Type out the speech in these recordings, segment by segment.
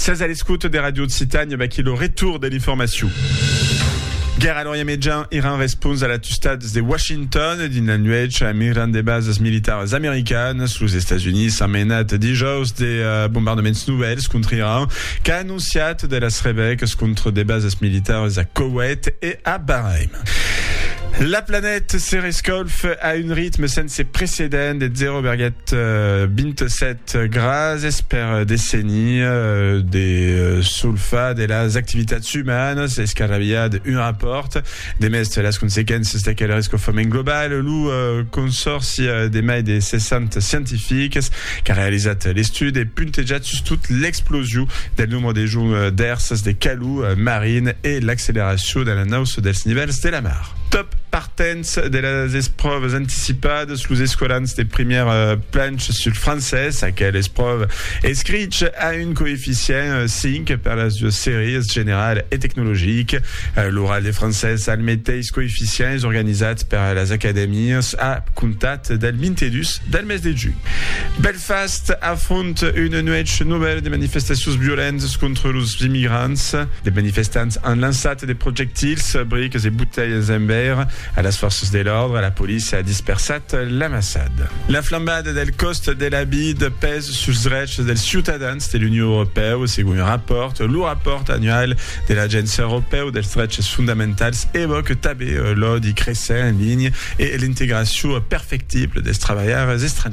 Sètz a l'escota de Radio Occitània, vaquí lo retour de l'informacion. Guèrra a l'Orient Mejan, Iran respons a l'atustats de Washington dins la nuèch a migrant de basas militaras americanas. Los Estats Units an menat dijòus de bombardaments novèls contra Iran, qu'a anonciat de las rebècas contra de basas militaras a Koweït e a Bahrain. La planèt se rescalf a un ritme sense precedent de 0,27 Gràcies per desenir de solfar de las activitats umanas es qu'arrabiat un rapòrt demest las consequéncias d'aquel rescofament global. Lo consòrci de mai de 60 scientifics qu'a realizat l'estudi e puntejat sustot l'explosion del nombre de joncs d'èrsas de calor marin e l'acceleracion de l'anauça dels nivèls de la mar. Dens de las espròvas anticipadas, los escolans de primièr planch sul francés, aquel espròva escrich a un coeficient 5 per las duas sèries, general e tecnologic. L'oral de francés al meteis coeficient es organizat per las acadèmias a comptat del 22 del mes de junh. Fast afronta una nuèch novèla de manifestacions violentas contra los immigrants. De manifestants an lançat de projectils, bricas e botelhas en veire a las fòrças de l'òrdre. La polícia a dispersat l'amassada. La flambada del còst de la vida pes suls drechs dels ciutadans de l'Union Europèu, segon un rapòrt. Lo rapòrt annual de l'Agéncia Europèu dels Drechs Fondamentals evòca tanben l'òdi cresent en linha e l'integracion perfectible dels trabalhaires estrangièrs.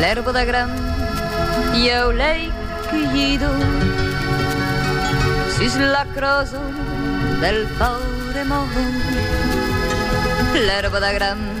L'erba da gran e au lei cuido sus la crosa del paure mòu l'erba da gran